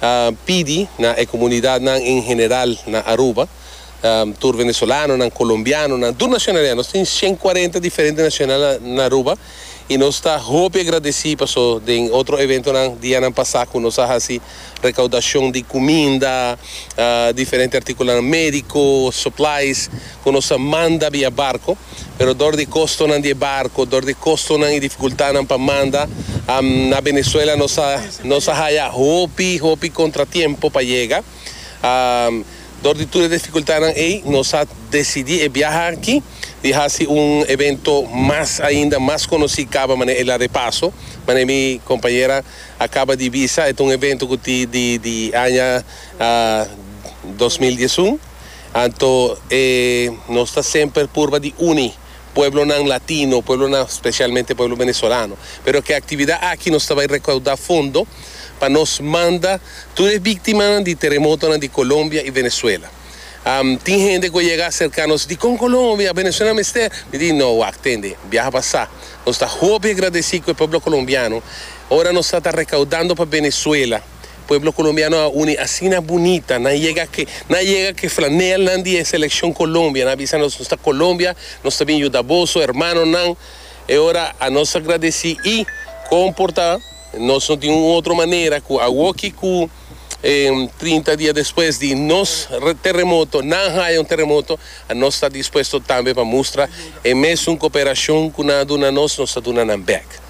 a pidi na e comunidadnan en general na Aruba, tur venezolanonan, colombianonan, tur nacionalidad, nos tin cien cuarenta diferente nacionalidad na Aruba y nos ta hopi agradeci paso den otro eventonan dianan pasa cu nos a haci recaudacion di cuminda, diferente articulonan medico, supplies, cu nos a manda via barco. pero dor di kostonan di e barko, dor di kostonan i difikultadnan pa manda, na Venezuela nos a nos a haya hopi hopi kontratiempo pa yega. Dor di tur e difikultadnan ei nos a desidí e biaha aki di hasi un evento mas ainda mas konosí kaba manera el a repaso, manera mi kompañera a kaba di bisa, e ta un evento ku tin di di aña dos mil diesun. Anto e nos ta semper purba di uni pueblonan latino, pueblonan specialmente pueblo venezolano. Pero cu e actividad aki nos ta bay recauda fondo pa nos manda tur e victimanan di teremotonan di Colombia y Venezuela. Tin hende cu a yega acerca nos, Dicon Colombia? Venezuela mester? Mi di, No, wak, tende, biaha pasa. Nos ta hopi agradeci cu e pueblo colombiano, ora nos a ta recaudando pa Venezuela, Pueblo Colombiano a uni asina bunita, nan yega ke nan yega ke flanelnan di e Seleccion Colombia, nan a bisa nos nos ta Colombia, nos ta bin yuda boso hermanonan, e ora a nos a gradeci y comporta, nos no tin un otro manera cu awoki cu trinta dia despues di nos terremoto, nan haya un terremoto, a nos ta dispuesto tambe pa mustra e mesun cooperacion cu nan a duna nos, nos ta duna nan bek.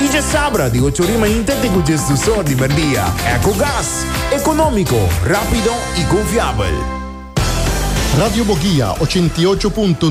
Y dje sabra di ocho rima inte te cu djesdusor di merdia. Ecogas, economico, rapido y confiabel. Radio Bogia ochenta i ocho punto